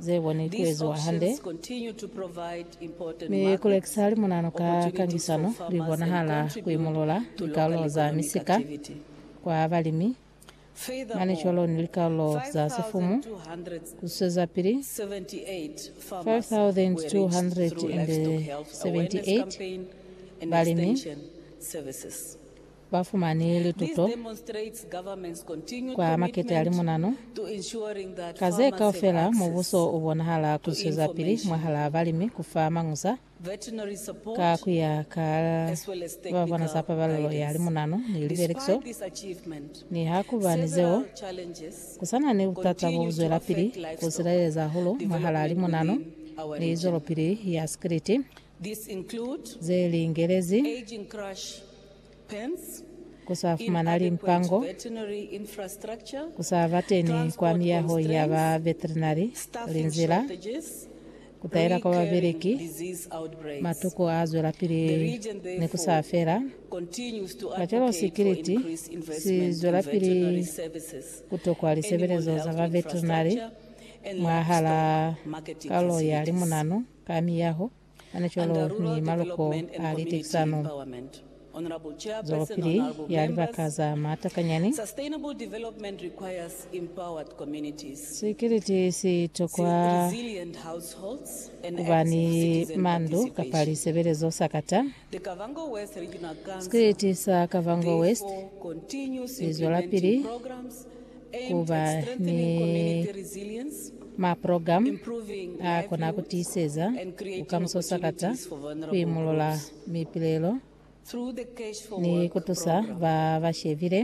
ze boni ku eziwa hande, mi ku lekisa limunanu ka kangisano li bonahala ku imulula likalulo za misika kwa balimi, manicolo ni likalulo za sifumu ku swezapili 5278 balimi. ba fumani lituto kwa makete a limunanu. Ka ze kaufela, mubuso u bonahala ku zwezapili mwahalaa balimi ku fa mañusa ka ku ya ka ba bona za pabalelo ya limunanu ni libelekiso. Niha ku ba ni zeo, ku sa na ni butata bo bu zwelapili ku silaleza hahulu mwahalaa limunanu ni zwelopili ya sikiliti. ze li ingelezi, ku sa fumana limpango, ku sa ba teni kwa miyaho ya ba veterinary, linzila, ku taela kwa babeleki, matuku a zwelapili ni ku sa fela. Kacwalo sikiliti si zwelapili ku tokwa lisebelezo za ba veterinary mwahal'a kalulo ya limunanu. Ka miyaho, mane cwalo ni maloko a litekisano zwelopili ya libaka za matakanyani, sikiliti si tokwa ku ba ni mandu kapa lisebelezo sa kata. Sikiliti sa Kavango West si zwelapili ku ba ni maprogramu a kona ku tiiseza bukamuso sakata, ku imulula mipilelo, ni ku tusa ba ba shebile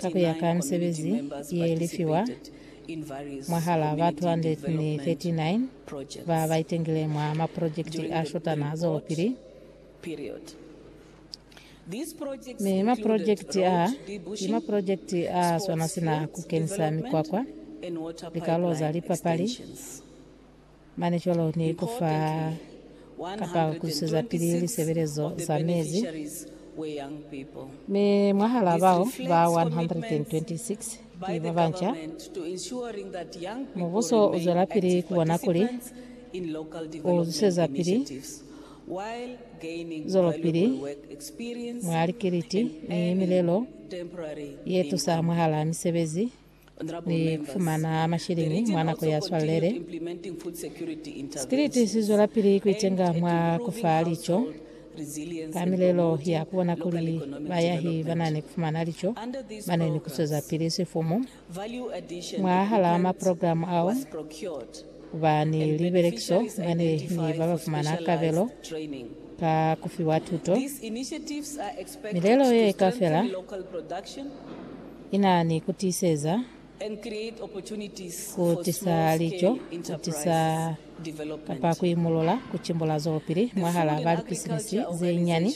ka ku ya ka misebezi ye lifiwa mwahal'a ba 239 ba ba itengile mwa maprojekiti a shutana zolopili. Mi mapolojekiti aa ki mapolojekiti a swana sina ku kenisa mikwakwa, likalo za lipapali, manicolo ni ku fa kapa ku zwisezapili lisebelezo za mezi, mi mwahalaa bao ba 126 ki ba banca. Mubuso u zwelapili ku bona kuli u zwisezapili. zwelopili mwa likiliti ni milelo ye tusa mwahal'a misebezi ni kufumana mashilingi mwa nako ya swalele. Sikiliti si zwelapili kuitenga mwa kufa lico ka milelo ya kubona kuli bayahi banani kufumana lico bane ni kuswezapili sifumu Mwahalaa maprogilamu ao, kuba ni libelekiso bane ni babafumana kabelo ka kufiwa tuto. Milelo ye kaufela ina ni kutiiseza, kutisa lico, kutisa kapa kuimulula, kucimbula zwelopili mwahalaa balipisinisi zenyani.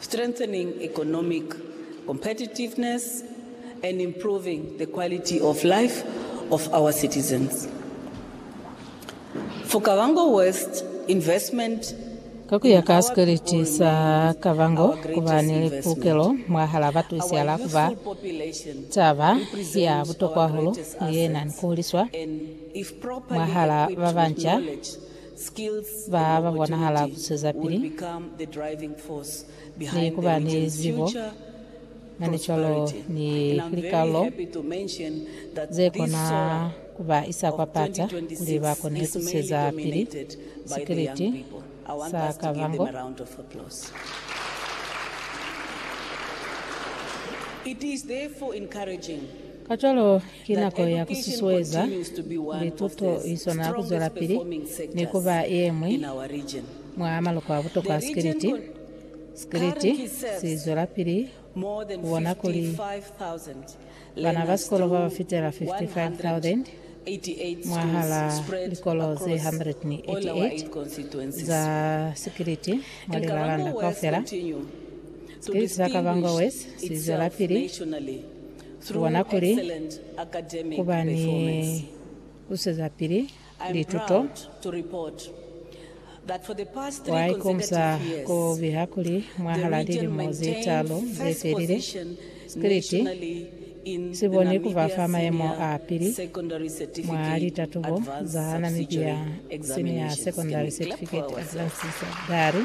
strengthening economic competitiveness and improving the quality of life of our citizens. For Kavango West, investment Ka ku ya ka sikweliti sa Kavango, ku ba ni pulukelo mwahal'a batusiala ku ba taba ya butokwa hahulu ye na ni ku huliswa mwahal'a ba banca skills, ba ba bonahala ku zwezapili ni ku ba ni zibo mane cwalo ni likalolo ze kona ku ba isa kwa pata kuli ba kone ku zweza pili sikiliti sa Kavango. Kacwalo, Ki nako ya ku susueza lituto i swana ku zwelapili ni ku ba ye ñwi mwa maloko a butokwa a sikiliti. Sikiliti si zwelapili ku bona kuli bana ba sikolo ba ba fitela 55,000 mwahal'a likolo ze 188 za sikiliti mwa Lilalanda kaufela. Sikiliti sa Kavango West si zwelapili. Ku bona kuli ku ba ni ku swezapili lituto, wa ikonisa ku biha kuli mwahalaa lilimo ze taalu ze felile, Spiliti si boni ku ba fa mayemo a pili mwa litatubo za Namibia Senior Secondary Certificate Advanced Secondary,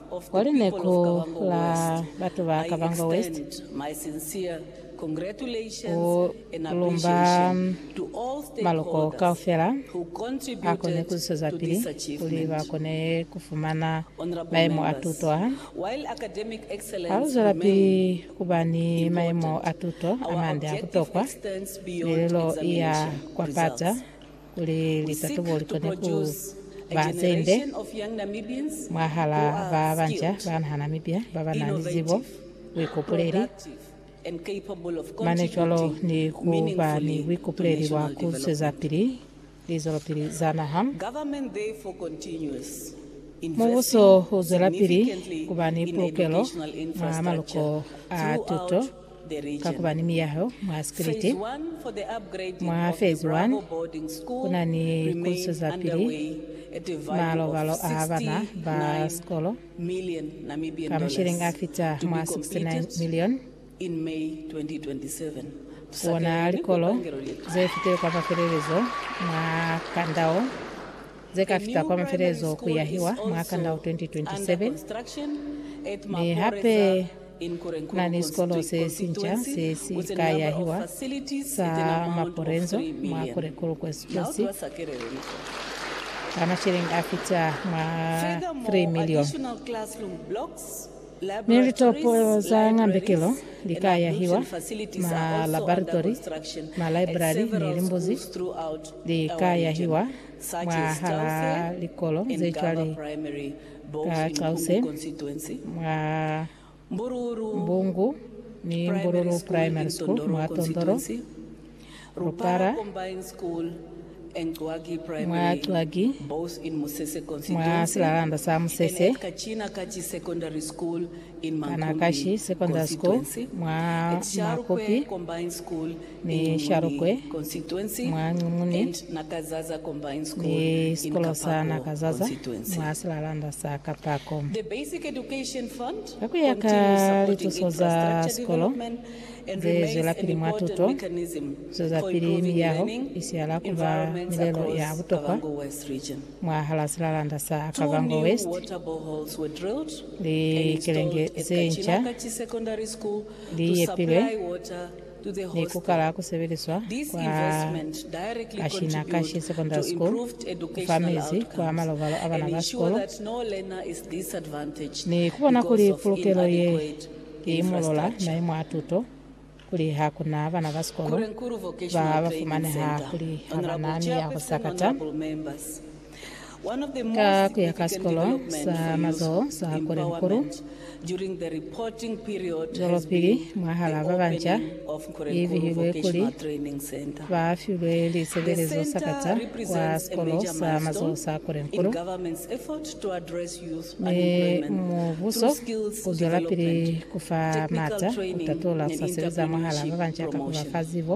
kwa lineko la batu ba Kavango West ku lumba maloko kaufela a kone ku zwezapili kuli ba kone ku fumana mayemo a tuto a ha lu zwelapili ku ba ni mayemo a tuto a mande a butokwa. Milelo i ya kwapaza kuli likatubo likone ku ba ze nde mwahalaa ba banca ba naha Namibia ba ba na ni zibo, buikopuleli, mane cwalo ni ku ba ni buikopuleli bwa ku zwezapili lizwelopili za naha. Mubuso u zwelapili ku ba ni pulukelo mwa maluko a tuto. Ka ku ba ni miyaho mwa sipiliti mwa fezi 1, ku na ni ku zwezapili malobalo a bana ba sikolo ka mashilingi a fita mwa 69 milioni ku ona likolo ze fitile kwa mafelelezo mwa kanda wo, ze ka fita kwa mafelelezo ku yahiwa mwa kanda wo 2027, mi hape Na ni sikolo se sinca se si ka yahiwa, sa Maporenzo, mwa Korekoro Konstituensi, ka masheleng a fita mwa 3 milioni. Ni litopo za ngambekelo li ka yahiwa, ma labaritori, ma laibrari ni limbuzi li ka yahiwa mwahal'a likolo ze cwale. Ka cause mwa Mbungu ni Mbululu Primary School mwa Tondoro, Lupara, mwa Cwagi, mwa silalanda sa Musese, Kanakashi Secondary School mwa Makopi, ni Sharukwe mwa Nqumuni ni sikolo sa Nakazaza mwa silalanda sa Kapako. Ka ku ya ka lituso za sikolo ze zwelapili mwa tuto, zwezapili miyaho i siala ku ba milelo ya butokwa mwahal'a silalanda sa Kavango West. Likelenge ze nca li yepilwe. ne ku kala ku sebeliswa kwa Kashinakashi Secondary School ku fa mezi kwa malobalo a bana ba sikolo ni ku bona kuli pulukelo ye i imolola mayemo a tuto kuli ha ku na bana ba sikolo ba ba fumaneha kuli ha ba na miyaho sakata. Ka ku ya ka Sikolo sa Mazoho sa Kolehukulu, zwelopili mwahal'a ba banca i bihilwe kuli ba filwe lisebelezo sakata kwa Sikolo sa Mazoho sa Kolehukulu, mi mubuso u zwelapili ku fa m'ata ku tatola ku sa sebeza mwahal'a ba banca ka ku ba fa zibo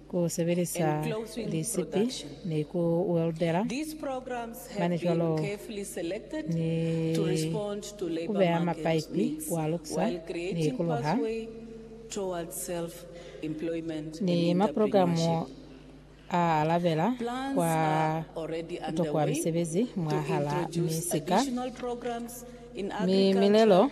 ku sebelisa lisipi ni ku weldela, mane cwalo ni ku beya mapaipi kwa luksa ni ku luha, ni maprogramu a alabela kwa ku tokwa misebezi mwahal'a misika mi milelo.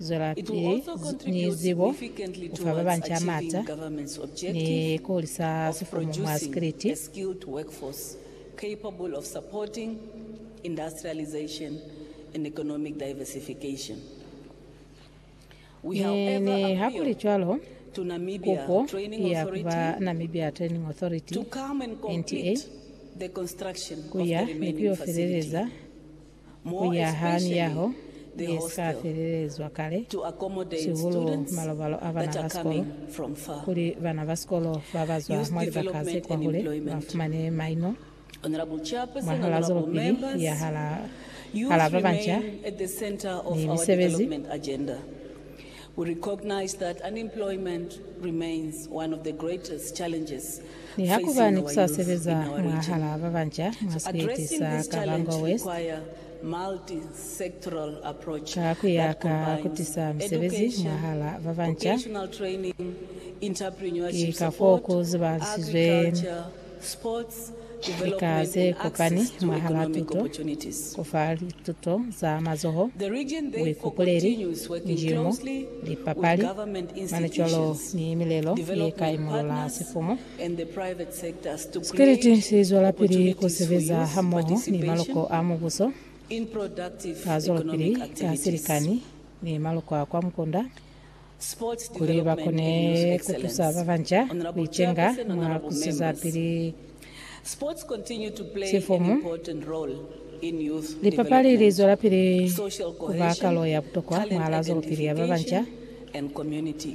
zwelapili ni zibo, ku fa ba banca maata, ni ku hulisa sifumu mwa sikiliti. Mi ni hakulicwalo, kupo ki ya ku ba Namibia Training Authority, NTA, ku ya ni ku yo feleleza ku ya ha miyaho ye si ka felelezwa kale, sihulu malobalo a bana ba sikolo, kuli bana ba sikolo ba ba zwa mwa libaka ze kwahule ba fumane maino mwahal'a zwelopili ya hal'a ba banca ni misebezi. We recognize that unemployment remains one of the greatest challenges Niha ku ba facing ni ku our sa youth sebeza in our region. mwahal'a ba banca mwa So sieti addressing sa this Kavango challenge West require multi-sectoral approach ka ku ya that ka ku combines tisa misebezi education, mwahal'a ba banca, vocational training, ki entrepreneurship ka f'o support, ku zibahalisizwe agriculture, Lika ze kopani mwahal'a tuto, ku fa lituto za mazoho, buikupuleli, njimo, lipapali, manicwalo ni milelo ye ka imolola sifumu. Spirit si zwelapili ku sebeza hamoho ni maloko a Mubuso ka zwelopili ka silikani ni maloko a kwa mukunda. kuli ba kone ku tusa ba banca ku icenga mwa ku sizapili sifomu. Lipapali li zwelapili ku ba kalo ya butokwa mwahala zwelopili ya ba banca,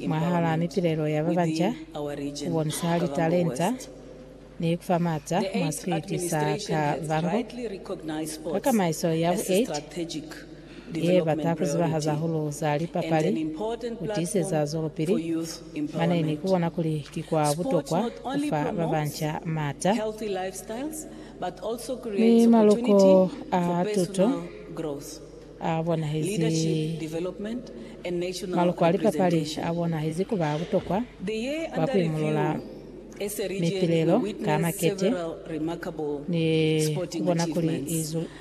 mwahala mipilelo ya ba banca, ku bonisa litalenta, Ni ku fa maata mwa sikiliti sa ka bango ka kamaiso ya bu 8 ye bata ku zibahaza hahulu za lipapali ku tiiseza zwelopili mane ni ku bona kuli ki kwa butokwa ku fa ba banca maata ni maloko a tuto a bonahezi. Maloko a lipapali a bonahezi ku ba butokwa kwa ku imulula ni tilelo ka makete ni ku bona kuli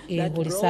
i hulisa